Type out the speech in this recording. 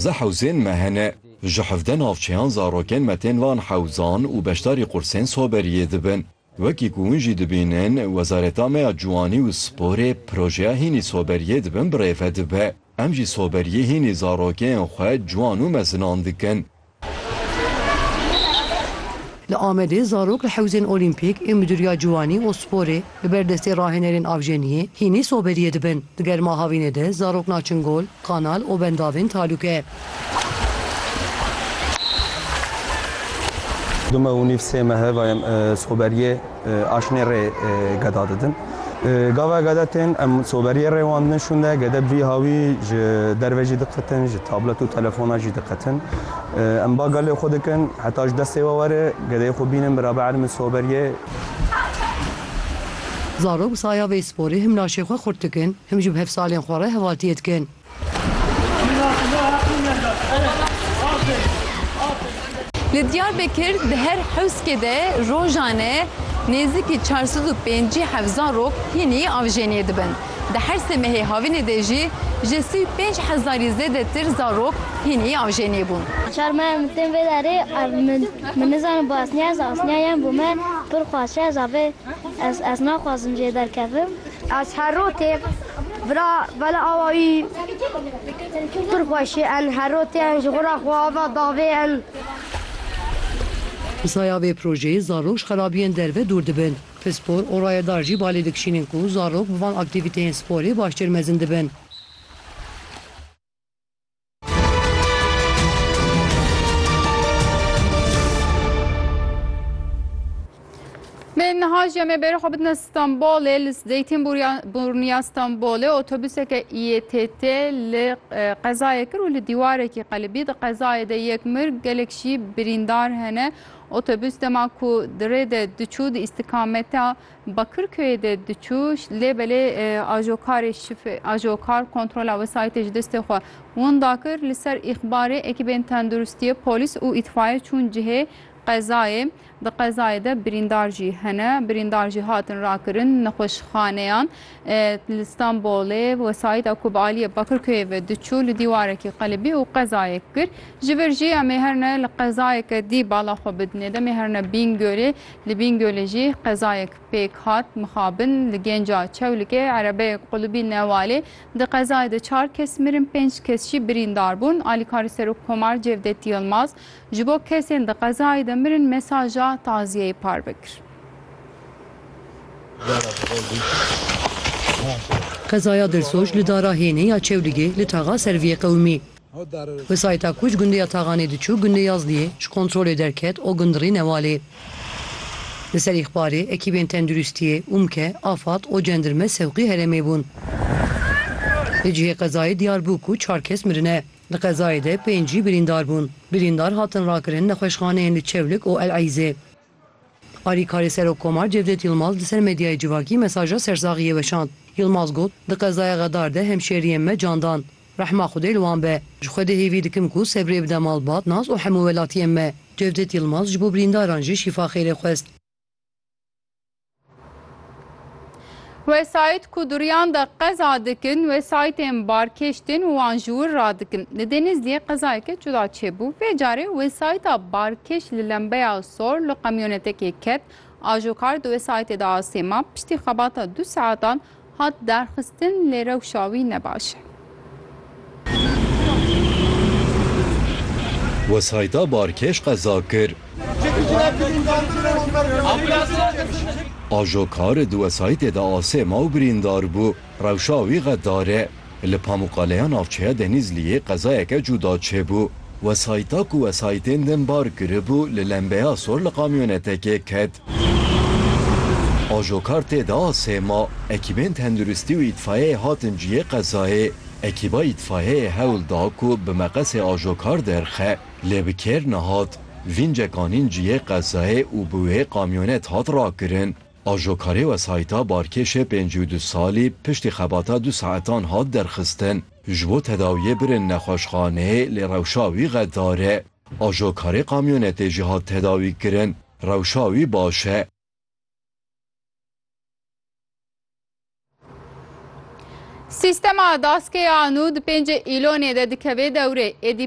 Zeh hewzên me hene. Ji hevdeh navçeyan zarokên me tên van hewzan û beşdarî qursên soberiyê dibin. Wekî ku hûn jî dibînin, Wezareta me ya Ciwanî û Sporê projeya hînî soberiyê di bin birêve dibe. Em jî soberiyê hînî zarokên xwe ciwan û mezinan dikin. Li Amedê zarok li hewzên Olîmpîk ê Midûriya Ciwanî û Sporê Li ber destê rahênerên Avjeniyê hînî soberiyê dibin. Di germa havînê de zarok naçin gol, kanal û bendavên talûke. Du meh û nîv sê mehe ve em soberiyê aşinê rê geda didin. Gava gede tên em soberiyê rê wan didin şûnde, gede bi vî hawî ji derve jî diqetin, ji tablet û telefona jî diqetin. Em ba gelê xwe dikin heta ji destê we were gedeyê xwe bînin biraber min soberiyê. Zarok bi saya vê sporê him laşê xwe xurt dikin, him jî bi hevsalên xwe re hevaltiyê dikin. Li Diyarbekir di her hewskê de rojane nêzîkî çar sed û pêncî heft zarok hînî avjeniyê dibin. Di her sê mehê havînê de jî ji sî û pênc hezarî zêdetir zarok hînî avjeniyê bûn. Çar meha min tên vê derê ev min. Min nizanim bi asniya ez asniya yan bo me pir xwaşe ez a vê ez ez naxwazim jê derkevim. Ez her ro tê vira vela awa wî pir xweş ê en her ro tê en ji xwe ra xwe ava davê en. Bi saya vê projeyê zarok ji xerabiyên derve dûr dibin. Pispor û rayedar jî balê dikişînin ku zarok bi van aktîvîteyên sporê baştir mezin dibin. Lê niha jî em ê bêrê xwe bidine Stenbolê li Zeytînburniya Stenbolê otobuseke ETT li qezayê kir û li dîwarekî qelibî di qezayê de yek mir gelek jî birîndar hene. Otobus dema ku di rê de diçû di îstikameta Bakirköyê de diçû lê belê ajokarê şif ajokar kontrola wesayîtê ji destê xwe winda kir. Li ser îxbarê ekîbên tenduristiyê, polîs û îtfayê çûn cihê qezayê. Di qezayê de birîndar jî hene. Birîndar jî hatin rakirin nexweşxaneyan. Li Stenbolê wesayîta ku bi aliyê Bakirköyê ve diçû li dîwarekî qelibî û qezayek kir. Ji vir jî em ê her ne li qezayeke dî bala xwe bidinê. Demê her ne Bîngölê. Li Bîngölê jî qezayek pêk hat mixabin. Li Genca Çewlikê erebeyek qulibî newalê. Di qezayê de çar kes mirin, pênc kes jî birîndar bûn. Alîkarê Serokkomar Cevdet Yilmaz ji bo kesên di qezayê de mirin mesaja taziyeyê parve kir. Qezaya Dirsoj li dara Hênê ya Çewligê li taxa Serviyê qewimî. Wesayîta ku ji gundê ya Taxanê diçû gundê Yazdiyê ji kontrolê derket o gund rî newalê. Li ser îxbarê ekîbên tenduristiyê, UMKE, Afad o cendirme sewqî herêmê bûn. Li cihê qezayê diyar bû ku çar kes mirine. Di qezayê de pênc jî birîndar bûn. Birîndar hatin rakirin nexweşxaneyên li Çewlik û El Eîzê. Alîkarê Serokkomar Cevdet Yilmaz li ser medyayê civakî mesaja sersaxiyê weşand. Yilmaz got, Di qezaya Xedar de hemşeriyên me can dan. Rehma Xwedê li wan be. Ji Xwedê hêvî dikim ku sebrê bide malbat, nas û hemû welatiyên me. Cevdet Yilmaz ji bo birîndaran jî şîfa xêrê xwest. Wesayît ku duriyan de qeza dikin wesayîtên barkêş tên û wan ji wir radikin. Li Denizliyê qezayeke cuda çêbû. Vê carê wesayîta barkêş li lembeya sor li qemyonetekê ket. Ajokar di wesayîtê de asê ma. Piştî xebata du saetan Hat derxistin lê rewşa wî ne baş e. Wesayîta barkêş qeza kir. Ajokar di wesayîtê de asê ma û birîndar bû. Rewşa wî xedar e. Li Pamûkaleya navçeya Denîzliyê qezayeke cuda çêbû. Wesayîta ku wesayîtên din bar kiribû li lembeya sor li kamyonetekê ket. Ajokar tê de a sê ma. Ekîbên tenduristî û îtfayeyê hatin cihê qezayê. Ekîba îtfayeyê hewl da ku bi meqesê ajokar derxe, lê bi kêr nehat. Vîncek anîn cihê qezayê û bi wê kamyonet hat rakirin. Ajokarê wesayîta Barkêşê pêncî û du salî piştî xebata du saetan hat derxistin. Ji bo tedawiyê birin nexweşxaneyê lê rewşa wî xedar e. Ajokarê kamyonetê jî hat tedawîkirin. Rewşa wî baş e. Sîstema Daskeya nû di pêncê îlonê de dikeve dewrê. Êdî